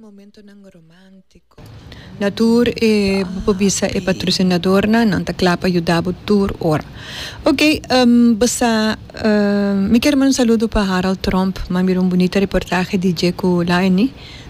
Momentonan romántico. Na tur e bo por bisa e patrocinadornan, nan ta kla pa yuda bo tur ora. Ok, bo sa, mi kier manda un saludo pa Harald Tromp, m'a mira un bunita reportahe di Jaco Laine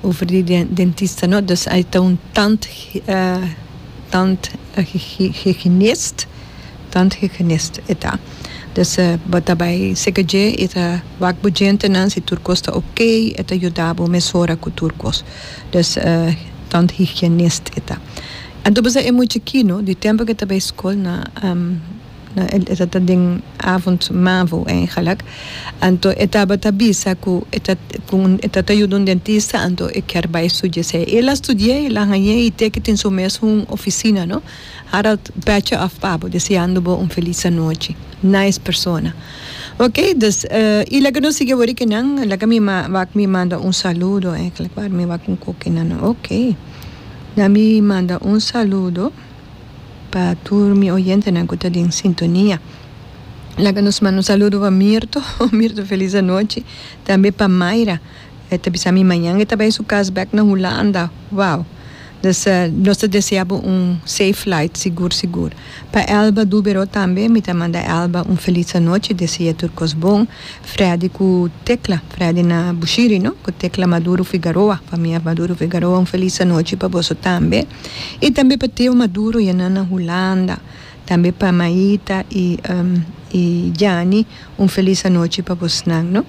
over di dentista, no? Dus ai ta un tand tandhygienist. Tant hygienist e ta. Dus bo ta bai seca dje y ta wak bo djentenan si tur cos ta ok, e ta yuda bo mesora cu tur cos. Dus tant hygienist e ta. Anto e mucha kino di tempo cu e ta bai scol na e ta ta den avond mavo eigenlijk, anto e tabata bisa cu e ta cu e ta ta yuda un dentista anto e kier bai studiesey. El a studiey, el a hañey y te cu tin su mes un oficina no. Harold Pecha of Pabo deseando bo un felis anochi. Nice persona. Ok dus y laga nos sigui awor ki nan laga mi wak mi manda un saludo eigenlijk waar mi wak un koki nan ok laga mi manda un saludo pa tur mi oyentenan ku ta den sintonia laga nos manda un saludo pa Mirto Mirto felis anochi tambe pa Mayra e ta bisa mi mañan e ta bai su kas bek na Hulanda wou. Dus nos ta desea bo un safe flight, sigur sigur. Pa Elba Dubero tambe mi ta manda Elba un feliz anochi, desea tur cos bon. Freddy cu Tecla, Freddy na Bushiri no, cu Tecla Maduro Figaroa, famia Maduro Figaroa un feliz anochi pa boso tambe. Y tambe pa Theo Maduro y e nan na Hulanda. Tambe pa Maita y Janny un feliz anochi pa bosnan no.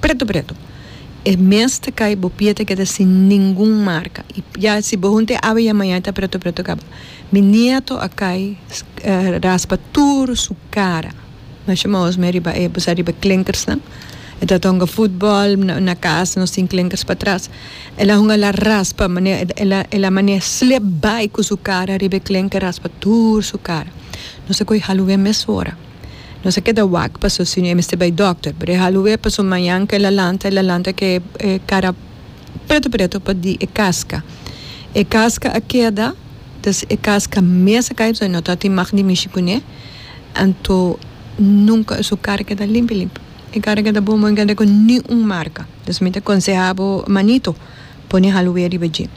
Pretu pretu. E mes ta kai bo pie ta keda sin ningun marka i ya si bo hunta e awe ya maña e ta pretu pretu kaba. Mi nieto a kai raspa tur su kara masha maosmi riba e bosa riba e klinkersnan e ta tonga futbòl na kas nos tin klinkers patras el a hunga el a raspa manera el a el a manera slip bai ku su kara riba e klinker raspa tur su kara nos a koyo halu wea e mes ora. Nos a keda wak paso si no e mester bai dokter. Pero e halu'é paso mañan ku el a lanta, el a lanta ku e kara preto preto pa di e kaska. E kaska a keda, dus e kaska mes a kai pasobra no ta tin mag di mishi kuné. Anto nunka su kara keda limpi limpi. E kara keda bon bon i keda ku ni un marka. Dus mi ta konsehá bo manito, pone e halu'é riba dje.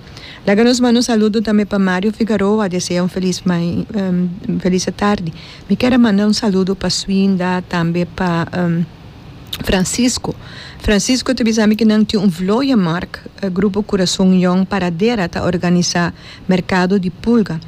Laga nos manda un saludo tambe pa Mario Figaroa, desea un felis mai, felis atardi. Mi ker a manda un saludo pa Swinda tambe pa Francisco. Francisco ta bisa mi ke nan tin un vlooie mark, Grupo Corazon Young Paradera ta organisa merkado di pulga.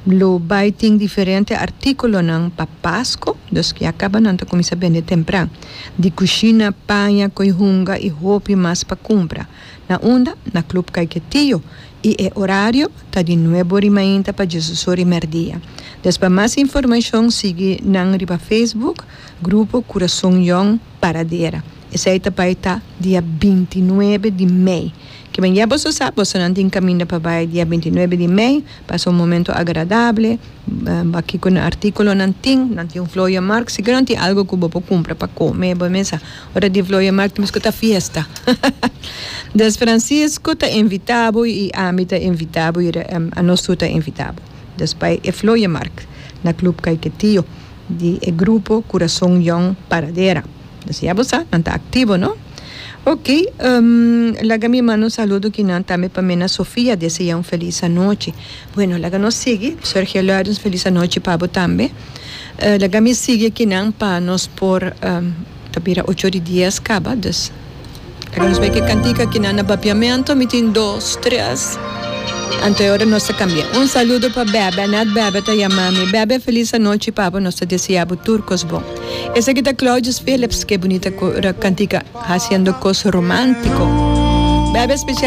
Lo bai tin diferente artikulonan pa Pasko, dus ya kaba nan ta kuminsa bende tempran. Di kushina, paña, koi hunga i hopi mas pa kumpra. Na unda, na club Caiquetillo, y e horario ta di nuebo ri mainta pa diesoso ri merdia. Des pa mas informacion sigui nan riba Facebook, Grupo Curason Young Paradera. Esey ta bay ta dia binti i nuebe di mei. Kiben ya boso sa, bosonan tin caminda pa bay dia binti i nuebe di mei, pasa un momento agradable, ba kico articulonan tin, nan tin un flor ya mark, si ke nan tin algo cu bo por cumpra pa come bo mesa. Ora di vloeia mak temos ku ta fiesta des Francisco ta invita bo i ami ta invita bo i anos tur ta invita bo des bai e vloeia mak na club kaiketio di e grupo kurason yòn paradera des ya bo sa nan ta aktivo no oke laga mi manda un saludo kinan tambe pa mena Sofia dese ya un felis anochi. Bueno laga nos sigui, Sergio Lourens felis anochi pa bo tambe. Laga mi sigui aki nan pa nos por ta bira ocho di dies caba dus laga nos bai ki e cantica aki nan na bapiamento mi tin dos tres anto e ora nos ta cambia. Un saludo pa Bebe net Bebe ta yama mi Bebe felis anochi pa bo nos ta desea bo tur cos bon. Esaki ta Claudius Philips ke bunita cantica haciendo cos romantico Bebe special.